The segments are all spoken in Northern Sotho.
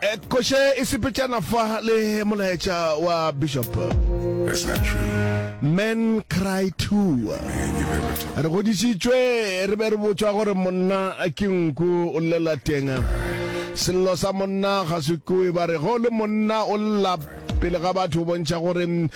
Eh, koše e sepetšana fa le molaetša wa bishop men cry too re godisitswe re be re botswa gore monna ke nku o llela teng sello sa monna ga se kue ba re go le monna o lla pele ga batho o bontšha gore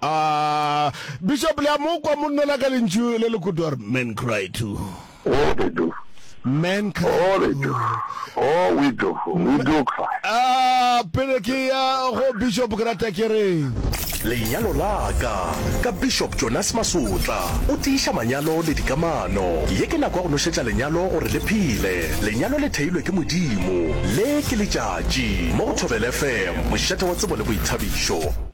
A Bishop le a mo kwa monno la ka lentšu le le kudu a re men cry too. Oh they do. Men cry too. Oh they do. Oh we do. We do cry. A pele ke ya go Bishop ke rata ke re. Lenyalo la ka ka Bishop Jonas Masotla o tiiša manyalo le dikamano. Ye ke nako ya go nošetša lenyalo gore le phele. Lenyalo le theilwe ke Modimo. Le ke letšatši mo go Thobela FM mošate wa tsebo le boithabišo.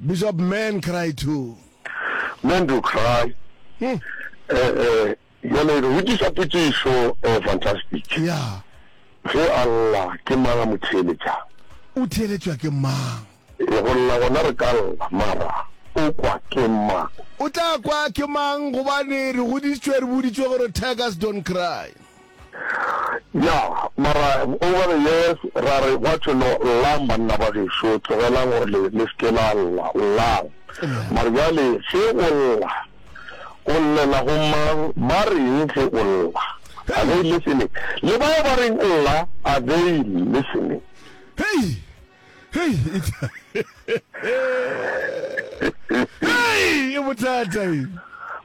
Bishop, Men cry too. Men do cry. Eh-eh, bjale re botšiša potšišo, eh, fantastic. Yeah. Ge a lla, ke mang a mo theeletšang? O theeletšwa ke mang? Eh, go lla gona re ka lla, mara o kwa ke mang? O tla kwa ke mang gobane re goditšwe re boditšwe gore tigers don't cry. Ya, mara over the years ra re gwa thwe no, llang banna ba gešo, tlogelang gore le, le seke la lla, llang. Mare bjale ge o lla, o llela go mang, ba reng ge o lla? Are they listening? Le bao ba reng lla, are they listening? Hei! hei e bothata e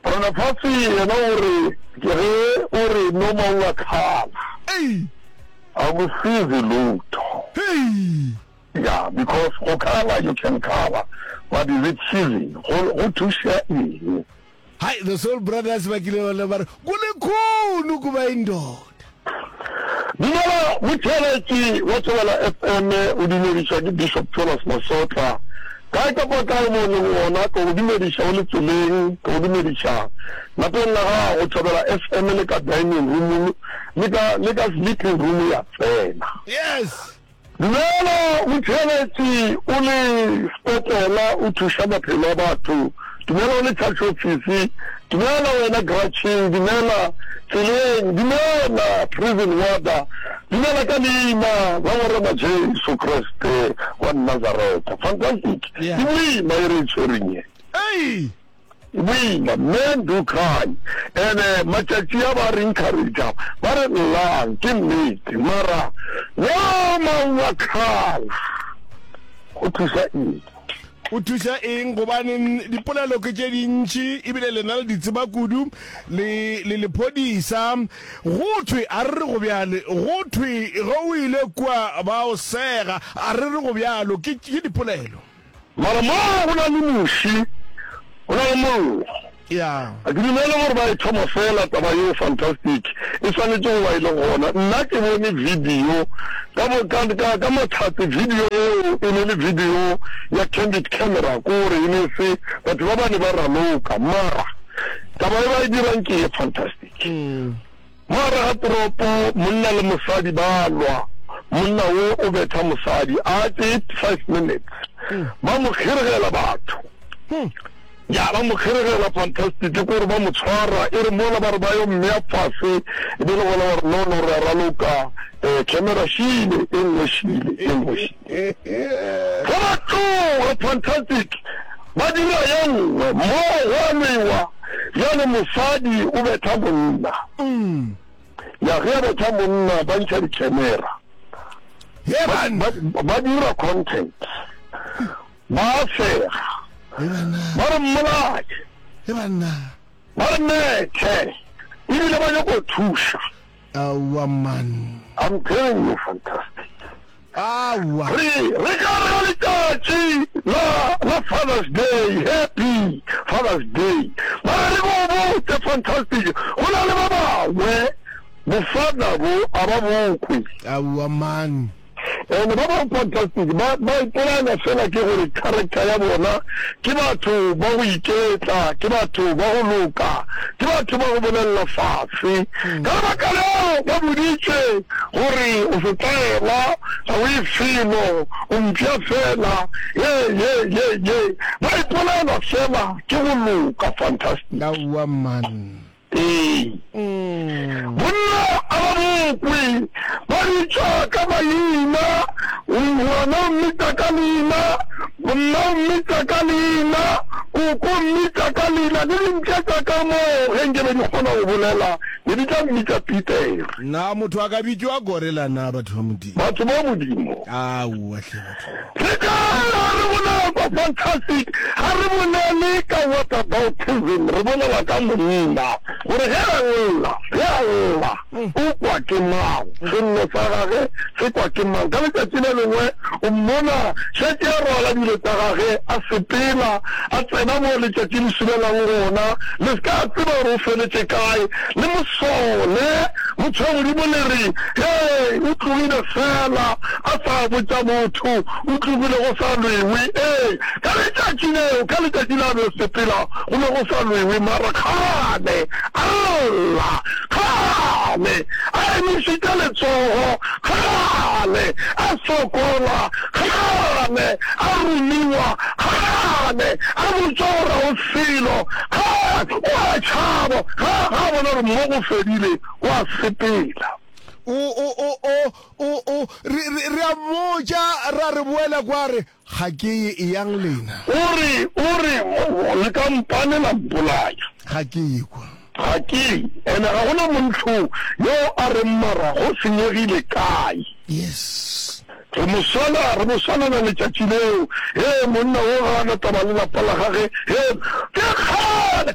Ronafasi yena o re ke ge o re no mang a tlala a go sizi lutho ya because go khala you can khala but is it cheesy go thuša eng Hai, the Soul Brothers ba kile ba le ba re, Ku likhulu ku ba indoda. Dumela motšheletši wa Thobela FM, o dumediša ke Bishop Jonas Masotla. Kae kapa kae mo o lego gona, ke go dumediša o le tseleng, ke go dumediša lapeng la gago, Thobela FM, le ka dining room, le ka, le ka sleeping room ya tsena. Yes! Dumela Motšheletši, o le sekopola, o thuša maphelo a batho. Dumela o le tšhatšofisi. Dumela wena Grouching. Dumela Tseleng. Dumela Prison Warder. Dumela ka Leina la Morena Jesu Kriste wa Nazareta. Fantastic! Ke boima e re e tšwereng ye. Ei! Boima, Men do cry and matšatši a ba re encourager ba re llang, ke nnete, mara yo maungo a khala go thuša eng? o thuša eng gobaneng dipolelo ke tše dintši ebile lena le ditseba kudu le le lephodisa go thwe a re re go bjale go thwe ge o ile kua ba o sega a re re go bjalo ke dipolelo Mara mo go na le muši, go na le mollo. Yeah. Ga ke dumele gore ba e thoma fela taba yeo fantastic e swanetše go ba e le gona nna ke bone video ka bo ka ka ka mathate video yeo e ne le video ya candid camera ko re e ne se batho ba bane ba raloka mara taba e ba e dirang ke ye fantastic mm. Mogare ga toropo, monna le mosadi ba a lwa. Monna wo o betha mosadi, a tee five minutes, ba mo kgiregela batho. Ya ba mo kgiregela, fantastic, ke gore ba mo tshwara, e re mola ba re ba yo mmea fase, e be le gona ba re no, no, re a raloka, eh, camera, šile, e nngwe šile, e nngwe šile. Ge ba tloga Fantastic, ba dira ye nngwe mo gwa lwewa, bjale mosadi o betha monna. Ya ge a betha monna, ba ntšha dikhenera, ba dira content, ba a sega, ba re mmolaye, ba re methe, ebile ba nyako thuša. Aowa man. I'm telling you fantastic. Aowa. Re, re ka re ka letšatši la, la Father's Day, Happy Father's Day. Mara re bo botse fantastic, go na le ba bangwe bo father bo a ba bokwe. Aowa man. And ba ba fantastic ba ba ipolaya fela ke gore character ya bona ke batho ba go iketla, ke batho ba go loka, ke batho ba go bolelela fase. Hmm. Ka lebaka leo ba boditše gore o setaela ga o e felo o mpša fela ye ye ye ye ba ipolaela fela ke go loka fantastic. Ka wa man. Ee, bonna a ba bokwe, ba bitšwa ka maina, O ngwana o mmitša ka leina, bonna o mmitša ka leina, koko o mmitša ka leina, le dintša tša ka moo ge nke be di kgona go bolela ne di tla mmitša Petere. Na motho a ka bitšwa gorela, na batho ba Modimo? Batho ba Modimo. Aowa hle, batho. Re ka lla re bolela ka fantastic, ga re bolele ka whataboutism, re bolela ka monna, gore ge a lla, ge a lla, o kwa ke mang, sello sa gage se kwa ke mang. Ka letšatši le lengwe o mmona šetše a rwala dilo tša gage, a sepela, a tsena mo letšatši le sulelang gona, le se ka tseba gore o feletše kae, le mo sole, motho wa Modimo le re, Hei, o tlogile fela. a sa botša motho, o tlogile go sa lwewe. Ee, ka letšatši leo, ka letšatši la be sepela, go be go sa lwewe, mara kgale, a lla, kgale a emišitše letsogo, kgale a sokola, kgale a rumiwa, kgale a botšwa gore o selo, kgale o a tšhaba, ga, ga a bona gore mmogo o fedile, o a sepela. O, o, o, o, O, o, re, re, re a mmotša, ra re boela kwa, a re, Ga ke ye, eyang lena. O re, o re, le ka mpane la mpolaya. Ga ke ye kwa. Ga ke, ene ga go na montlo yo a reng, Mara go senyegile kae? Yes. Re mo swala, re mo swalela letšatši leo. Hee, monna wo ga a na taba le lapa la gagwe. Hee, ke kgale.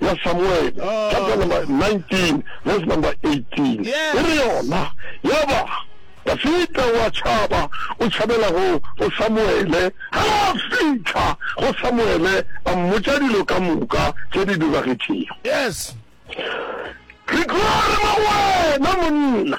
ya Samuele, chapter number 19, verse number 18, e re yona, Ya ba, Dafida wa tšhaba, o tšhabela go, go Samuele. Ge a fihla go Samuele, a mmotša dilo ka moka tše di diragetšego. Re tloga re re, Wena monna!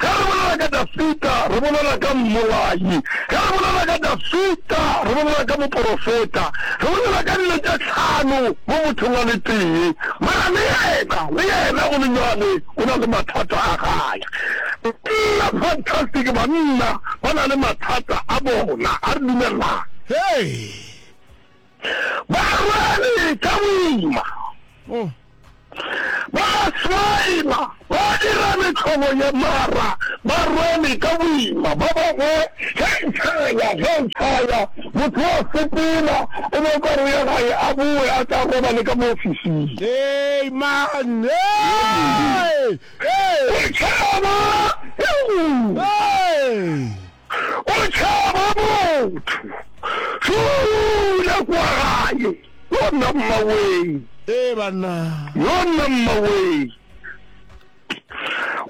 Ge re bolela ka Dafida, re bolela ka mmolai. Ge re bolela ka Dafida, re bolela ka moporofeta. Re bolela ka dilo tše hlano mo mothong a le tee. Mara le yena, le yena go le bjale o na le mathata a gage. Banna, fantastic, banna ba na le mathata a bona. A re dumelelane. Hei! Ba rwele ka boima, ba swaima, ba dira mehlobo ye mara ba rwele ka boima. Ba bangwe ge e tšhaya, ge e tšhaya, motho o a sepela, o be o ka re o ya gae, a bowe a tla robale ka mo ofising. Amen. Ee. Ee. Go tšhaba ke go. Ee. o tšhaba motho Dula kwa gae Yona mmawee Ee banna Yona mmawee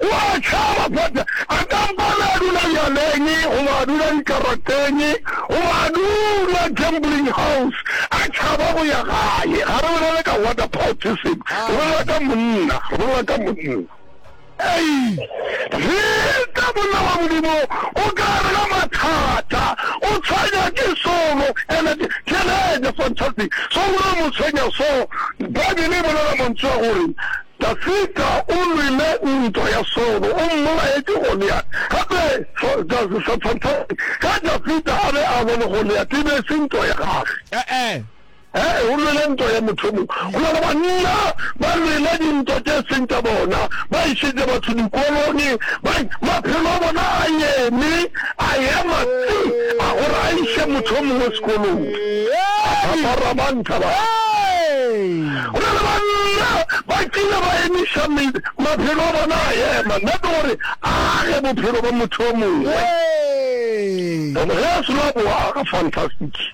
O a tšhaba But a ka mpa be a dula bjaleng Goba a dula dikarateng Goba a dula gambling house A tšhaba go ya gae Ga re bolele ka Waterportism Re bolela ka monna Re bolela ka monna Ei, re ka bolawa Modimo o ka re ga mathata, o tshwenya ke solo, and ke Teenager, fantastic, so gore o mo tshwenya so, Bible e bolela mantšu a gore Dafita o lwile ntwa ya solo, o mmolaye ke Goliat, gape fantastic, ge Dafita a be a lwa le Goliat e be e se ntwa ya gage. E-e. Ge o lwele ntwa ya mothomo, go na le banna ba lwele dintwa tše seng tša bona, ba išetše batho dikolone, ba, maphelo a bona a eme, a ema tsi, a gore a iše motho yo mongwe sekolong. Aparamanta ba. Go na le banna ba kile ba emiša me, maphelo a bona a ema, nnete gore a age bophelo bja motho yo mongwe. Ge a selo a bo aga, fantastic.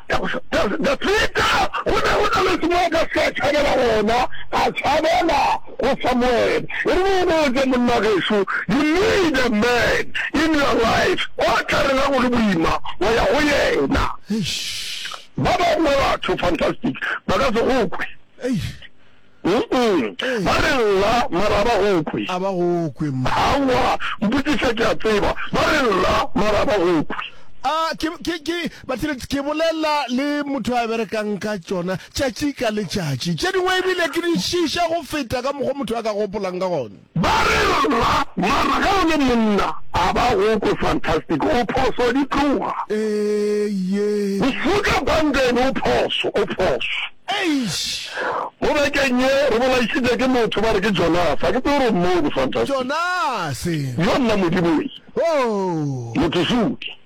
Dafida o ne o na le se mo a ka se ka tšhabela gona, a tšhabela go Samuele. E re o botše, Monna gešo, you need a man in your life o tla rera go le boima wa ya go yena. Ba bangwe batho, fantastic, ba ka se go kwe. Umm, ba re lla, mara a ba go kwe. A ba go kwe mma. Aowa, mpotšiša ke a tseba. Ba re lla, mara a ba go kwe. A, ke, ke, ke, bathile, ke bolela le motho a berekang ka tšona tšatši ka letšatši. Tše dingwe ebile ke di šiiša go feta ka mokgwa motho a ka gopolang ka gona. Ba re, Rra, mara ge o le monna, a ba go kwe fantastic, o phoso, di tloga. Eeiyee. Mofuta Brandon o phoso, o phoso. Eish! Mo bekeng ye, re bolaišitše ke motho ba re ke Jonase, ga ke tsebe gore o mmone fantastic. Jonase! Yo nna Modimo ee. Hoo! Motho sutu.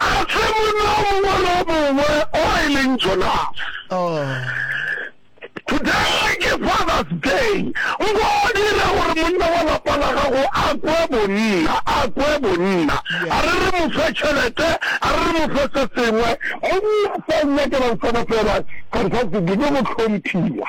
A se monna o mongwe le o mongwe o e leng Jonase. Today ke Father's Day. Nko o dire gore monna wa lapa la gago a kwe bonna, a kwe bonna. A re re mo fe tšhelete, a re re mo fe se sengwe. Monna sa o nyakelang sona fela, fantastic, ke go hlomphiwa.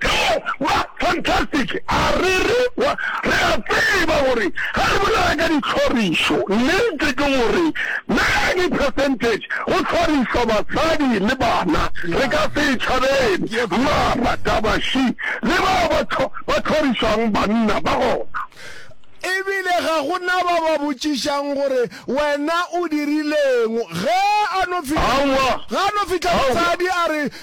Ka ba fantastic, a re re kwa. Re a tseba gore ge re bolela ka dihlorišo, nnete ke gore many percentage go hlorišwa basadi le bana. Re ka se e tšhabele, mara taba she le bao ba ba hlorišwang banna ba gona. E bile ga go na ba ba botšišang gore wena o dirileng ge a no fihla, Aowa, ge a no fihla aowa. mosadi a re,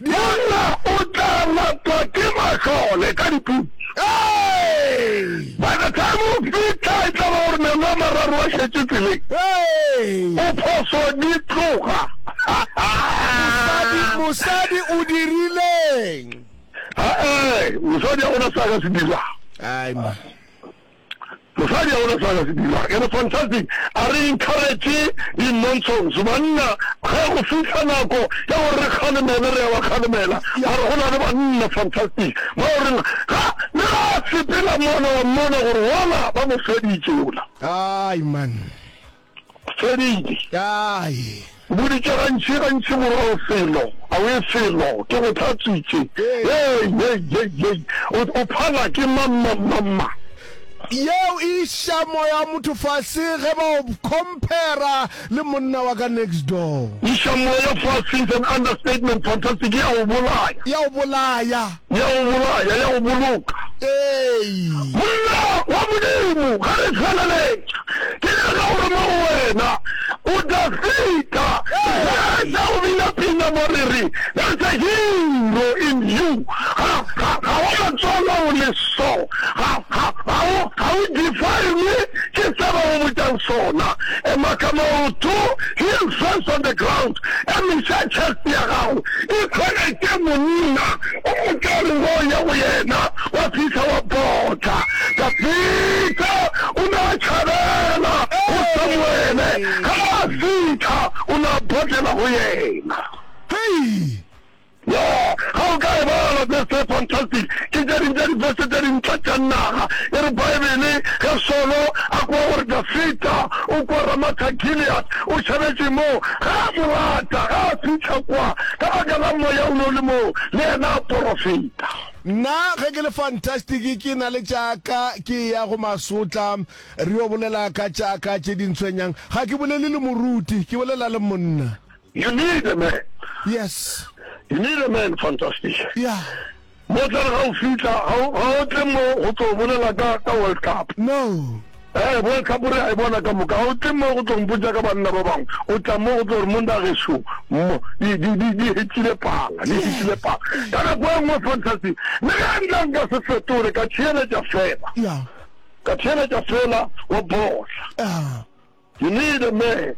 Bjona o tla ngwatwa ke mahlole ka diputso. By the time o fihla e tla ba gore meno a mararo a šetše tseleng. O phoso di tloga. Mosadi, mosadi o dirileng? Aa, mosadi a gona sa ka se dirago. Ai ma. Mosadi ya rona Sarah Sedima e re Fantastic a re encourage di-nonsense banna ge go fihla nako ya gore re kgalemele re ya ba kgalemela mara go na le banna Fantastic ba o reng ga le ga a sepela mona wa mmona gore wala ba mo feditše ola. Aai man. Feditše. Kae. Boditše gantši, gantši morago felo, awee felo, ke go hlatswitše. Hei, hei, hei, hei, o, o phala ke mang, ma, ma, ma. Yeo e iša moya wa motho fase ge ba o compara le monna wa ka next door. Iša moya fase is an understatement, fantastic, e a o bolaya. E a o bolaya. ya go bolaya, ya go boloka. Ee. Monna wa Modimo, ge re feleletša, ke nyaka go rema go wena, o tla feta ge sa go bina pina mo re re, There's a hero in you. Ga, ga, ga wa matswala o le so. Ga, ga, ga o, ga o define-we ke se ba go botšang sona. Ema ka maoto, heel first on the ground. Ka mehla tšhasi ya gago e tshwana ke monna o mokari wo ya go yena wa fihla wa botla. Dafida o ne a tšhabela go Samuele ge a fihla o ne a botlela go yena. Hei! Yo, ga o ka e bala se se fantastic. Ke tše ding tša dibese tše dintle tša naga. E re Baebele, Ge Solo a kwa gore Dafita o kwa Ramatha-Gilead, o šabetše moo, ga a mo lata, ga a fihla kwa, ka baka la Moya o ne o le moo, le yena a porofeta. Nna, ge ke le fantastic, ke na le tša ka, ke eya go Masotla, re yo bolela ka tša ka tše di ntshwenyang. Ga ke bolele le moruti, ke bolela le monna. You need a man. Yes. You need a man, fantastic. Yeah. Mo tla ga o fitla, ga o tle mo go tlo bolela ka ka World Cup. No. Eh, World Cup re a e bona ka moka. Ga o tle mo go tlo mpotsa ka banna ba bangwe. O tla mo go tlo re monna ge sho. Di di di di hetile pala, di hetile pala. Ka nako e nngwe fantastic. Le ga nna nka se fetole ka theeletša fela. Yeah. Ka theeletša fela wa bola. Ah. You need a man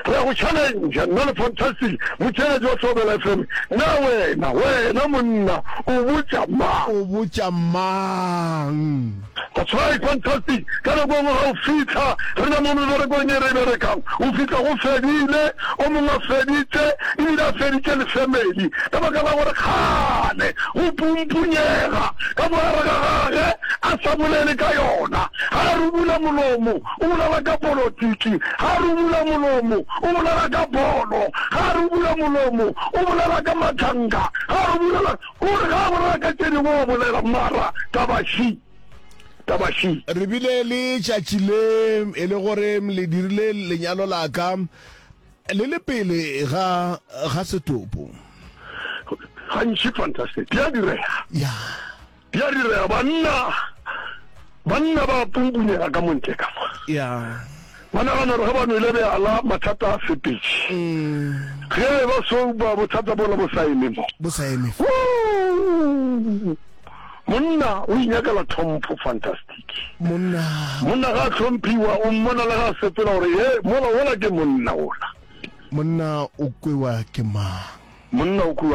Re a go challenger nna le Fantastic motšeletši wa Thobela FM Na wena, wena monna o botša mang? O botša mang? That's right Fantastic Ka nako engwe ga o fihla re na mo meberekong e re e berekang o fihla go fedile, o mongwe a feditše ebile a feditše le family ka baka la gore kgale go pumpunyega ka mogare ga gage a sa bolele ka yona. Ga a rubula molomo o bolela ka polotiki, ga re o bula molomo, o bolela ka bolo, ga re o bula molomo, o bolela ka mathanga, ga re o bulela, o re ga a bolela ka tše dingwe o bolela, mara taba shi, taba shi. re bile le tšatši le e le gore le dirile lenyalo la ka le le pele ga ga setopo Gantši fantastic, di a direga. ya Ya direga, banna, banna ba punpunyega ka montle ka fa. Ya. Ba nagana gore ge ba nwele beala, mathata a fepetše. Ge e ba so, ba bothata bola bo sa eme mo. Bo sa eme. Woo! Monna o inyakela tlhompho, fantastic. Monna. Monna ga a tlhomphiwa, o mmona le ga a sepela gore, ye, mola, wola ke monna wola. Monna o kwewa ke mang? Monna o kwewa.